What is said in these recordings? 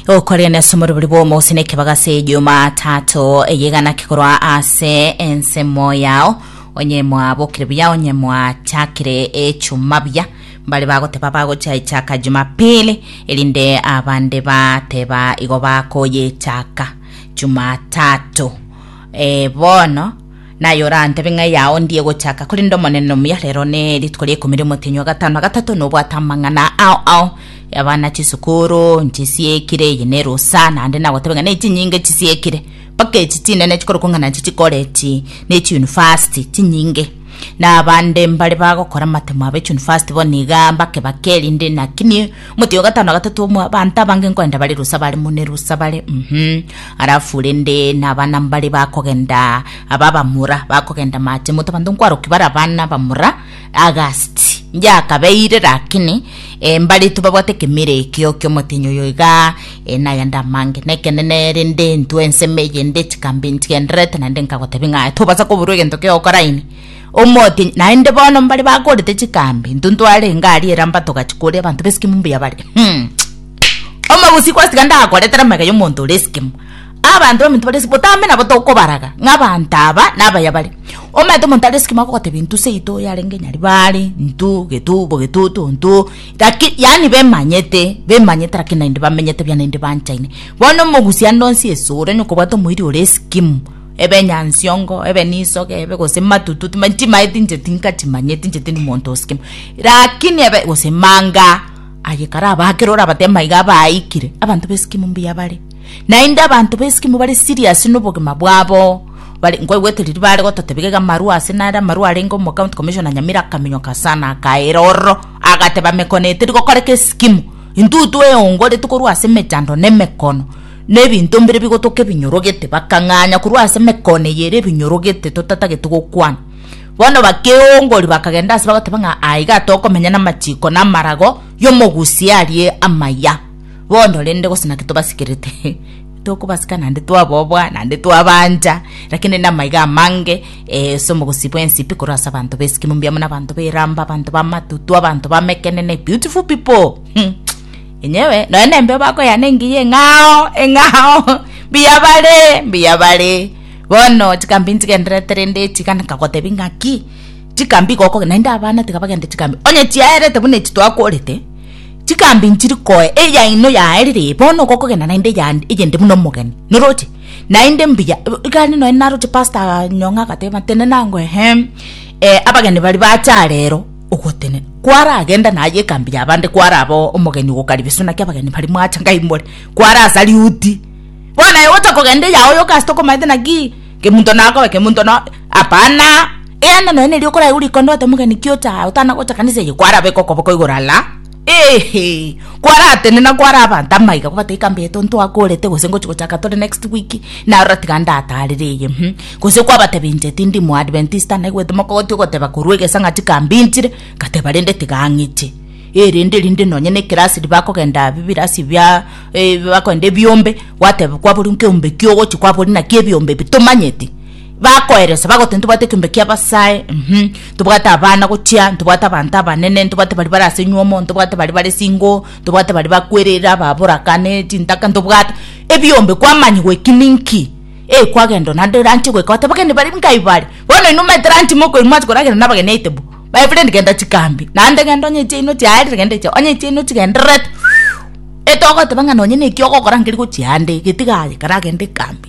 okorire na ase omoribori bw'omosi na ekebaga ase jumatatu eyegana kekorwa ase ensemo yao onye mwabokire buya onye mwachakire echuma buya mbare bagoteba bagochaichaka jumapili erinde abande bateba igo bakoyechaka jumatatu e bono Naye orantebe ng'a eyao ndiye gochaka, korende Omonene nomuya rero ne rituko ria ikomi riomotenyi o gatano na gatato nobwate amang'ana ao ao. Abana chisukuru nchisiekire, eye nerusa, naende nagotebe ng'a nechinyinge chisiekire, mpaka echi chinene chikorokwa ng'a nachi chikorechi ne chiunifasti chinyinge. Na abande mbare bagokora amatemo abe chiunifasti bono iga mbake bake, rinde naki Omotienyi o gatano na gatato omoa abanto abange nkogenda bare rusa bare mune rusa bare uhmm alafu rende na abana mbare bakogenda aba abamura bakogenda mache moto abanto nkwarokia bare abana abamura agasti ngiakabeire lakini eh, mbarete babwate ekemira ekio kia omotienyi oyo igaa eh, nagende amange na ekenene rende intwe ensemo eye nde chikambe nchigendererete naende nkagotebi ng'a tobasa koburwa egento kegokora ime. Omotienyi, naende bono mbare bakorete chikambi, intwe ntwarenge aria eramba togachikoria abanto b'esikimo mbuya bare. Hmm. Omogusi gwatiga ndakoretera amega y'omonto ore esikimo. Abanto baminto bare esikimo, botambe nabo tokobaraga ng'a abanto aba nabaya bare. Omanyete omonto are esikimo agogotebia intwe seito yarenge Nyaribari, intwe getu bo getutu intwe, laki yaani bemanyete, bemanyete laki naende bamenyete buya naende banchaine. Bono omogusi ande onsi esore onye okobwata omoiri ore esikimo, ebe nyansiongo ebe nisoge ebe gose matutu tima ntimae tinche tinka timanye tinche tindi monto osikima rakini ebe gose manga aye kara abakere orabate maiga abaikire abanto besikimu mbuya bare naende abanto besikimu bare serious nobogima bwabo bare nkoigwete riria bare gototebiga iga amarwa ase nare amarwa arenge omo county commissioner nyamira akaminyoka sana akaira ororo agateba mekone eteri gokoreka esikimu intutwa eongo ritukorwa ase emechando na emekono. na ebinto mbire bigotoka ebinyorogete, bakang'anya korwa ase emekone eye ere ebinyorogete totatagete gokwana. Bono bakeongoria, bakagenda ase bagoteba ng'a aa iga tokomenya namachiko na amarago y'omogusia aria amaya. Bono rende gose naki tobasikerete? Tokobasika naende twaboboa, naende twabaancha, rakini namaiga amange ase omogusi bw'ensipi korwa ase abanto b'esiki mbuya buna abanto b'eramba, abanto b'amatutu, abanto b'amekenene, beautiful people. Inyewe nonya nembe bakoyana engiya eng'ao eng'ao mbuya bare mbuya bare bono chikambi nchigendererete rende echi iga nkagotebi ng'aki chikambi iga okogenda naende abana tiga bagende chikambi onye chiaerete buna echi twakorete chikambi nchiri koe eyaino yaerire eye bono igo okogenda naende eyande eyende buna omogeni noroche naende mbuya iga aria nonya naroche pastor nyong'o agateba tenena ngwa ehe abageni baria bacha arero. ogotenena. Kwaragenda naye ekambi y'abande kwaraba omogeni ogokaribisu naki abageni baria mwacha ngaimore kwarasa riuti. Bono aye gocha kogenda eyago yoka ase tokomaete naki kemunto nakoe kemunto no hapana. Eanda nonya neri okoraigwa rikonda ote omogeni ki ocha otana gocha kanisa eye kwaraba ekokoboko igoro ala. Eeh kwaratenena kware abanto amaiga kobata ekambi yaito ntwakorete gose ngochi gochaka tore next week narora tiga ndatarire eye uhum gose kwabatebia inche tindi muadventista naigwete mokogotia ogoteba korwa egesa ng'a chikambi nchire ngateba rende tiga ng'iche eh rende rinde nonye ne ekerasi riria bakogenda bibirasi bia bakogenda ebiombe gwateba kwaboria nkeombe ki ogochi kwaboria naki ebiombe ebi tomanyeti. Bakoereswa, bagoteba, Ntobwate ekeombe kia Abasae, mm, ntobwate abana gochia, ntobwate abanto abanene, ntobwate baria bare ase nywomo, ntobwate baria bare single, ntobwate baria bakwerire ababoraka ne chintaka, ntobwate ebiombe kwamanyigwa eki ninki? Eh, kwagenda o naende ranche goika goteba abageni baria nkai bare? Bono inwe omanyete ranchi mokoirwa mwachi koragera na abageni aitebo? My friend genda chikambe, naende genda onye chiaino chiaerire genda echa, onye chiaino chigendererete, whew, etogoteba ng'a nonye naki ogokora nkeri gochia ande, getiga aye kare agende kambi.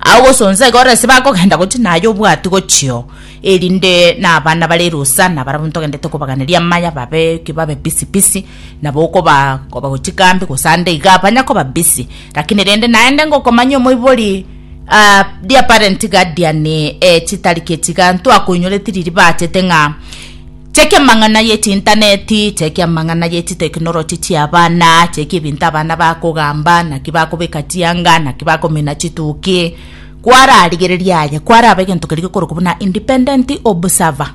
Agosonsa iga orese bakogenda gochia naye obwati gochio, erinde nabana bare rusa nabarabwo ntogendete kobaganeria amaya babe ki babe busy busy nabo okoba koba gochia kambi gose ande iga banya koba busy lakini rende naende ngokomanya omoibori ah dear parent guardian eh chitariki echi iga ntwakoinyoreti riria bachete ng'a Chi'ekiamang'ana gi'echiintaneti, chi'ekiamang'ana gi'echiteknoloji chi'abana, chi'ekebinto abana bakogamba, naki bakobeka chianga, naki bakomina chituki, kwararigereria aye, kwaraba egento keria gekorokwa buna independent observer.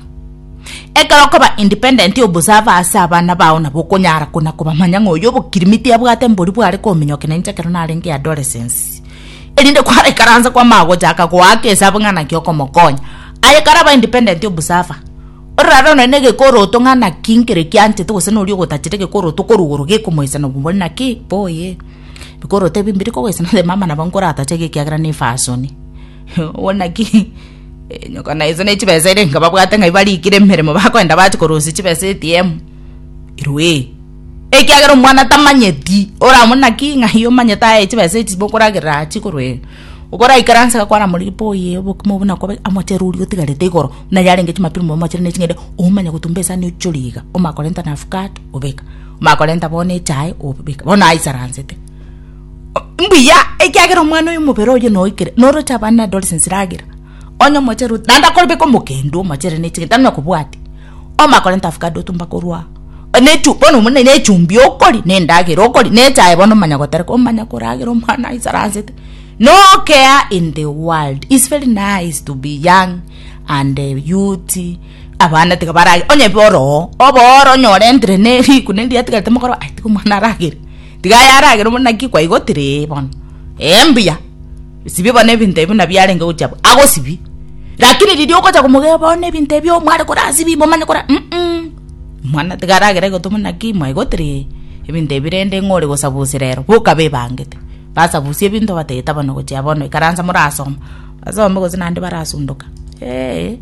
Ekero okoba independent observer ase abana bao nabo okonyara kona kobamanya ng'a oyo obokirimiti abwate mbori bware kominyoka na inche ekero narenge adolescence, erinde kwaraikaransa kwamanya gochaka goaka esabu ng'a naki okomokonya. Aye karabe independent observer. Ororare onye negekorooto ng'a naki nkere kianchete gose noria ogotachete egekorooto korwa igoro gekomoisana obwo naki mboye ebikorooto ebi mbiri kogoisana onye mama nabo nkoratache iga ekiagera ne efasoni obwo naki nyoko na ise ne chibesa ere nkababwate ng'ai barikire emeremo bakoenda bache korosia chibesa ATM irwee ekiagera omwana tamanyeti oramuna ki ng'ai omanyete aye chibesa echi bokoragerera chikorwa ee. Okoraikaranse agakwana moreria boo yee obokima obo nakobe amochere oria otigarete igoro buna yarenge chimapiri mobe mochere ne ching'ende omanye gotumba esani ochore iga omanye korenta na avocado obeka omanye korenta bono echae obeka bono aisaransete mbuya ekiagera omwana oyo omobere oye noikire noroche abana adolescence ragira onye omochere naende akobeka omokende omochere ne ching'ende tari nokobwati. Omakorenta avocado otumba korwa aa nechu bono omoni ne echumbi okori ne endagera okori ne echae bono omanya gotereka omanya koragera omwana aisaransete nokea in the world is very nice to be young and youth abana tiga barage onye bwa oroo obe oro onye orentire ne riguna eria atigarete mogoro aye tiga omwana aragere tiga aye aragere omoni naki kwaigotire ee bono ee mbuya. Sibie bono ebinto ebi buna biarenge gochia abwo, agosibie. Lakini riria ogocha komotebia bono ebinto ebi oo mware korasibia imomanye kora mm mwana tiga aragere gotwa buna ki mwaye gotiri ebinto ebi rende ng'o ore gosabusia rero boka bebangete basabusie ebinto bateta bono gochia bono ikaransa morasoma basome gose naende barasundoka eeh.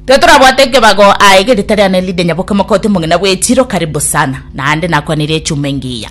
Tiga torabwate ekebago aye ege rita riane Lydia Nyaboke omokoti omogina bwa echiro karibu sana naende nakwanirie echuma engiya.